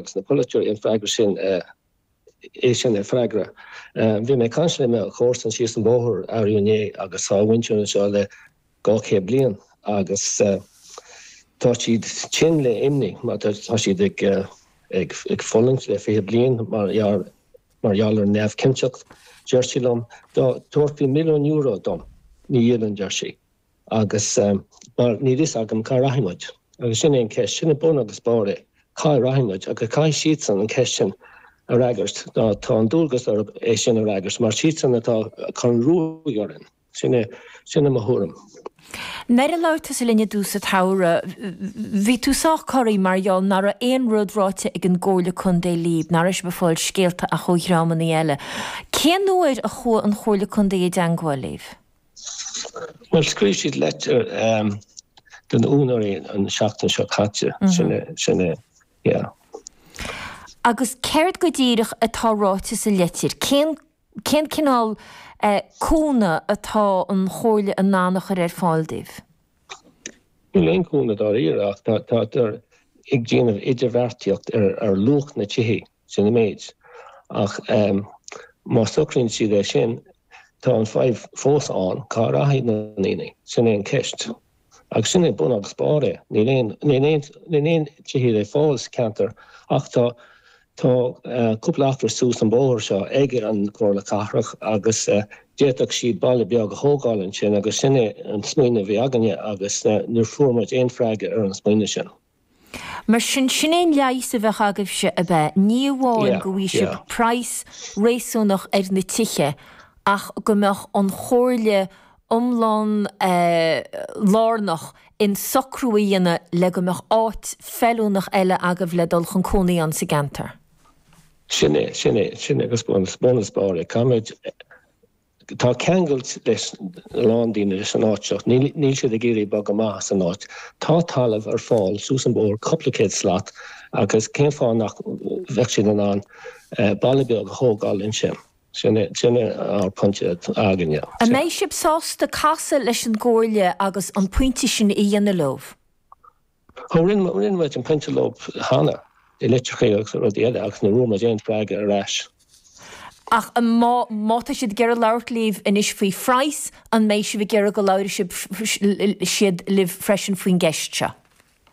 Agus na polaiteoirí an freagra sin, é sin a fhreagairt. Bhí mé ag caint le mo chomharsan síos an bóthar, arú inné agus tá a mhuintir anseo le dhá chéad bliain agus tá siad tinn le imní mar tá siad ag fulaingt le fiche bliain mar gheall mar gheall ar an neamhchinnteacht. Deir sí liom, dá dtabharfaí milliún euro dom, ní dhíolfainn, deir sí. Agus, mar, níl fhios agam cá rachaidh muid. Agus sin é an ceist, sin é bun agus barr é, cá rachaidh muid? Agus caithfidh siadsan an ceist sin a fhreagairt, nó tá an dualgas orthu é sin a fhreagairt, mar siadsan atá ag cur an ruaig orainn. Sin é, sin é mo thuairim. Nuair a labhair tusa linn i dtús an tsamhraidh, bhí tú sách corraí mar gheall nach raibh aon rud ráite ag an gComhairle Contae libh, nach raibh sibh ag fáil scéalta ach ó dhreamannaí eile. Cén uair a chuaigh an Chomhairle Contae i dteangmháil libh? Bhuel, scríobh siad litir do na úinéirí an tseachtain seo caite, sin é, yeah. Agus céard go díreach atá ráite sa litir? Cén, cén cineál cúnamh atá an Chomhairle in ann a chur ar fáil dóibh? Níl aon cúnamh dáiríre ach tá, tátar ag déanamh idirbheartaíocht ar luach na tithe. Sin an méid. Ach má socraíonn siad é sin, tá an fadhb fós ann, cá rachaidh na ndaoine? Sin é an ceist. Agus sin é bun agus barr é. Níl aon, níl aon, níl aon tithe le fáil sa cheantar ach tá, tá cúpla acra suas an bóthar seo ag an gComhairle Cathrach agus d'fhéadfadh siad baile beag a thógáil ansin agus sin é an smaoineamh a bhí againne agus níor fuair muid aon freagra ar an smaoineamh sin. Mar sin, sin é an leigheas a bheadh agaibhse, ab ea? Ní amháin go bhfaighidh sibh praghas réasúnach ar na tithe ach go mbeadh an chomhairle iomlán lárnach in socrú a dhéanamh le go mbeadh áit feiliúnach eile agaibh le dul chun cónaí ann sa gceantar. Sin é, sin é, sin é, agus bun agus, bun agus barr an rud. Tá ceangailt leis a lán daoine leis an áit seo. Níl siad ag iarraidh bogadh amach as an áit. Tá talamh ar fáil suas an bóthar cúpla céad slat agus cén fáth nach bheadh siad in ann baile beag a thógáil ansin? Sin é ár bpointe againne. An mbeidh sibh sásta casadh leis an gComhairle agus an pointe sin a dhéanamh leo? Ó, rinne muid an pointe leo cheana, i litreacha agus rudaí eile, agus níor fhuair muid aon freagra ar ais. Ach má tá siad ag iarraidh labhairt libh anois faoi phraghas, an mbeidh sibh ag iarraidh go labhróidh siad libh freisin faoin gceist seo?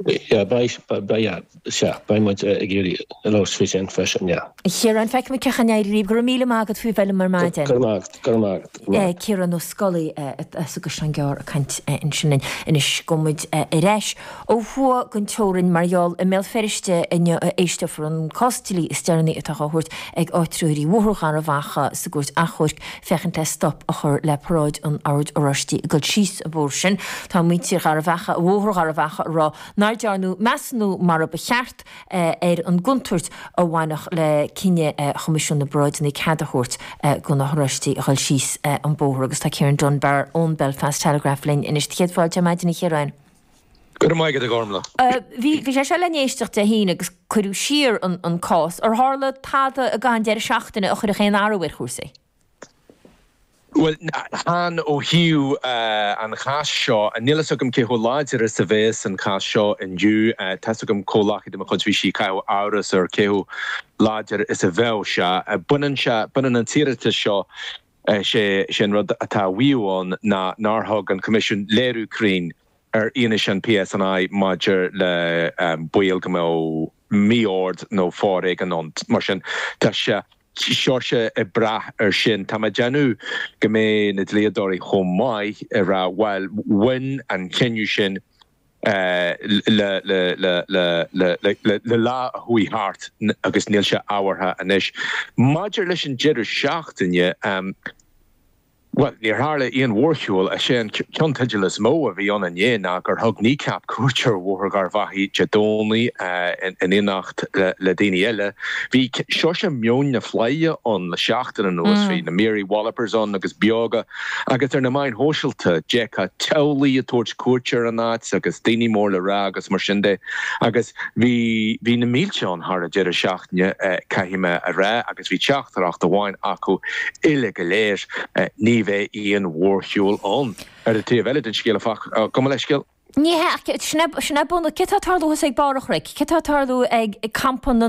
Yeah, beidh, yeah, sea, beidh muid ag iarraidh labhairt faoi sin freisin, yeah. A Chiaráin, feicfimid cén chaoi a n-éireoidh libh. Go raibh míle maith agat faoi bheith liom ar maidin. Go raibh maith agat, go raibh maith agat. Ciarán Ó Scolaí agus Seán Geárr ag caint ansin linn. Anois gabhfaidh muid ar ais ó thuaidh den teorainn, mar gheall, i mBéal Feirste inniu a éisteofar an cás dlí is deireanaí atá á thabhairt ag áitritheoirí Bhóthar Gharbhachaidh sa gCúirt Achomhairc féachaint le stop a chur le paráid an Oird Oráistigh ag dul síos an bóthar sin. Tá muintir Gharbhachaidh, Bhóthar Gharbhachaidh ag rá nár dearnadh measúnú mar a ba cheart, ar an gcontúirt a bhainfeadh le cinneadh Choimisiún na bParáideanna cead a thabhairt do na hOráistigh a dhul síos an bóthar agus tá Ciarán Dunbar ón Belfast Telegraph linn anois. Do chéad fáilte ar maidin, a Chiaráin. Go raibh maith agat, a Ghormlaith. Bhí sé seo le n-éisteacht Dé hAoine agus cuireadh siar an cás. Ar tharla tada ag an deireadh seachtaine a chuirfeadh aon athrú ar chúrsaí? Bhuel, sea, ó thaobh an cháis seo, níl fhios agam cé chomh láidir is a bhéas an cás seo indiu. Tá fhios agam comhghleacaí de mo chuid, bhí sí ag caitheamh amhras ar cé chomh láidir is a bheadh sé. Baineann sé, baineann an t-iarratas seo, sé, sé an rud atá á mhaíomh ann ná nár thug an Coimisiún léiriú cruinn ar fhianaise an PSNI maidir le baol go mbeadh mí-ord nó foréigean ann. Mar sin, tá sé. Seórsa ag brath air sin. Tá mé ag déanamh go mbeidh na dlíodóirí chomh maith ag rá, bhail, bhain an cinneadh sin le lá a chuaigh thart agus níl sé ábhartha anois. Maidir leis an deireadh seachtaine, Bhuel, níor tharla aon mhórshiúl, is é an ceannteideal is mó a bhí ann inné ná gur thug Kneecap cuairt ar Bhóthar Gharbhachaidh Dé Domhnaigh in éineacht le daoine eile. Bhí seórsa meon na fleidhe ann le seachtain anuas, bhí na Mary Wallopers ann agus Beoga, agus ar na meáin shóisialta, d'fheicfeá teaghlaigh ag tabhairt cuairte ar an áit agus daoine mór le rá agus mar sin de. Agus bhí. Bhí na mílte ann thar an deireadh seachtaine, caithfidh mé a rá, agus bhí teachtaireacht amháin acu uile go léir, ní bheidh aon mhórshiúl ann. Ar an taobh eile den scéal, áfach, gabh mo leithscéal. Ní hea, sin ag bun, céard tá ag tarlú thuas ag barr an chnoic, céard tá ag tarlú ag campa na.